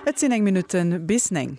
Et sinn néng Minutten bis néng.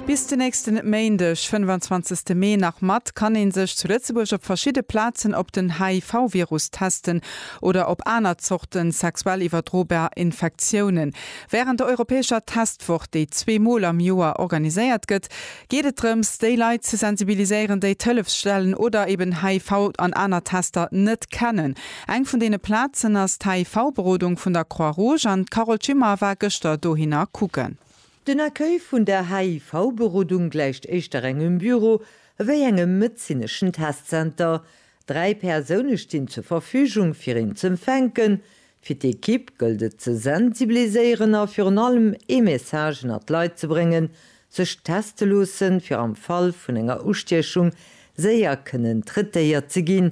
Bis den nächsten Méindeg, 25 Mee nach mat kann een sech zu Lëtzebuerg op verschidde Plazen op den HIV-Virus testen oder op aner Zorten sexuell iwwerdrobar Infektiounen. Wärend der europäescher Testwoch, déi zwee Mol am Joer organiséiert gëtt, geet et drëms déi Leit ze sensibiliséieren, déi d'Hëllefsstellen oder eben HIV an aner Tester net kennen. Eng vun deene Plazen ass d'HIV-Berodung vun der Croix-Rouge an d'Carole Schimmer war gëschter dohinner kucken. Den Accueil vun der HIV-Berodung gläicht éischter engem Büro ewéi engem medezineschen Testzenter. Dräi Persoune stinn zur Verfügung fir een z'empfänken. Fir d'Ekipp gëllt et ze sensibiliséieren a virun allem ee Message ënner d'Leit ze bréngen, sech teste loossen, fir am Fall vun enger Ustiechung séier kënnen traitéiert ze ginn,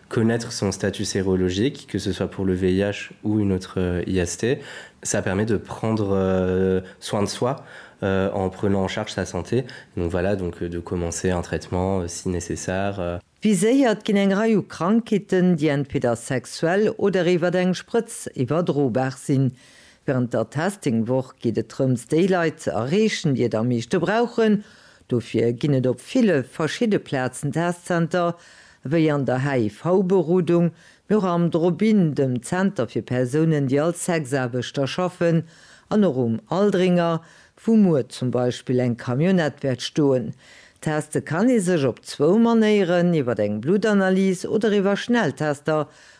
Connaître son statut sérologique, que ce soit pour le VIH ou une autre IST, ça permet de prendre soin de soi en prenant en charge sa santé. Donc voilà, donc de commencer un traitement si nécessaire. Viséiert ginn eng Rei u Krankheeten, déi entweder sexuell oder iwwert eng Sprëtz iwwerdrobar sinn. Wärend der Testing-Woch geet et drëms, déi Leit ze erreechen, déi et am meeschte brauchen. Dofir ginn et op ville verschidde Plazen Testzenter, wéi an der HIV-Berodung, mee och am Drop-In, dem Zenter fir Persounen, déi als Sexaarbechter schaffen, an och um Aldringer, wou muer zum Beispill eng Camionnette wäert stoen. Teste kann ee sech op zwou Manéieren, iwwer eng Bluttanalys oder iwwer Schnelltester,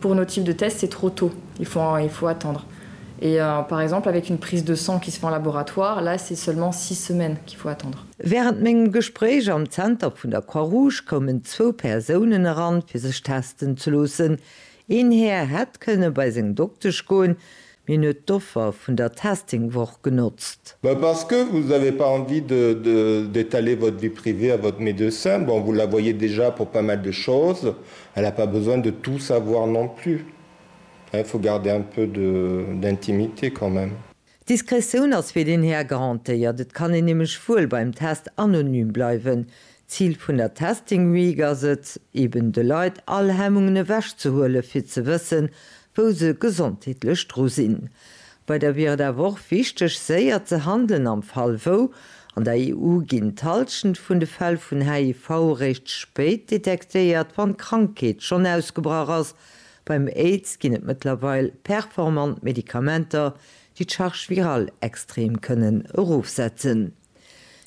Pour nos types de tests, c'est trop tôt, il faut un, il faut attendre. Et par exemple avec une prise de sang qui se fait en laboratoire, là c'est seulement six semaines qu'il faut attendre. Wärend mengem Gespréich am Zenter vun der Croix Rouge koumen zwou Persounen eran, fir sech testen ze loossen. Een Här hätt kënne bei seng Doktesch goen, Hien huet d'Offer vun der Testing-Woch genotzt. Mais parce que vous avez pas envie de de d'étaler votre vie privée à votre médecin, bon vous la voyez déjà pour pas mal de choses, elle a pas besoin de tout savoir non plus, hein, il faut garder un peu de d'intimité quand même. D'Diskretioun ass fir deen Här garantéiert, et kann een nämlech wuel beim Test anonym bleiwen, Zil vun der Testing Week ass et, eben de Leit all Hemmungen ewech ze huelen, fir ze wëssen, wou se gesondheetlech dru sinn. Bei der wier et awer och wichteg, séier ze handelen am Fall wou. An der EU ginn d'Halschent vun de Fäll vun HIV eréischt spéit detektéiert, wann d'Krankheet schonn ausgebrach ass. Beim Aids ginn et mëttlerweil performant Medikamenter, déi d'Charge virale extrem kënnen erofsetzen.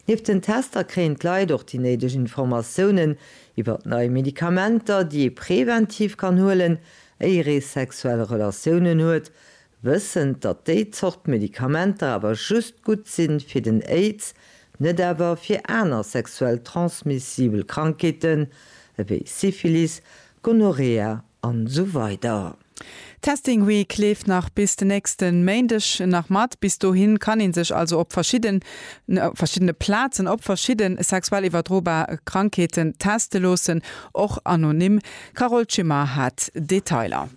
Nieft den Tester kréien d'Leit och déi néideg Informatiounen iwwert nei Medikamenter, déi ee preventiv kann huelen, éier ee sexuell Relatiounen huet, wëssend, datt déi Zort Medikamenter awer just gutt si fir den Aids, net awer fir aner sexuell transmissibel Krankheeten ewéi Syphilis, Gonorrhea an esou weider. D'Testing Week leeft nach bis den nächste Méindeg nach mat. Bis dohin kann ee sech also op verschiddene Plazen op verschidde sexuell iwwerdrobar Krankheete teste loossen, och anonym. D'Carole Schimmer hat d'Detailer.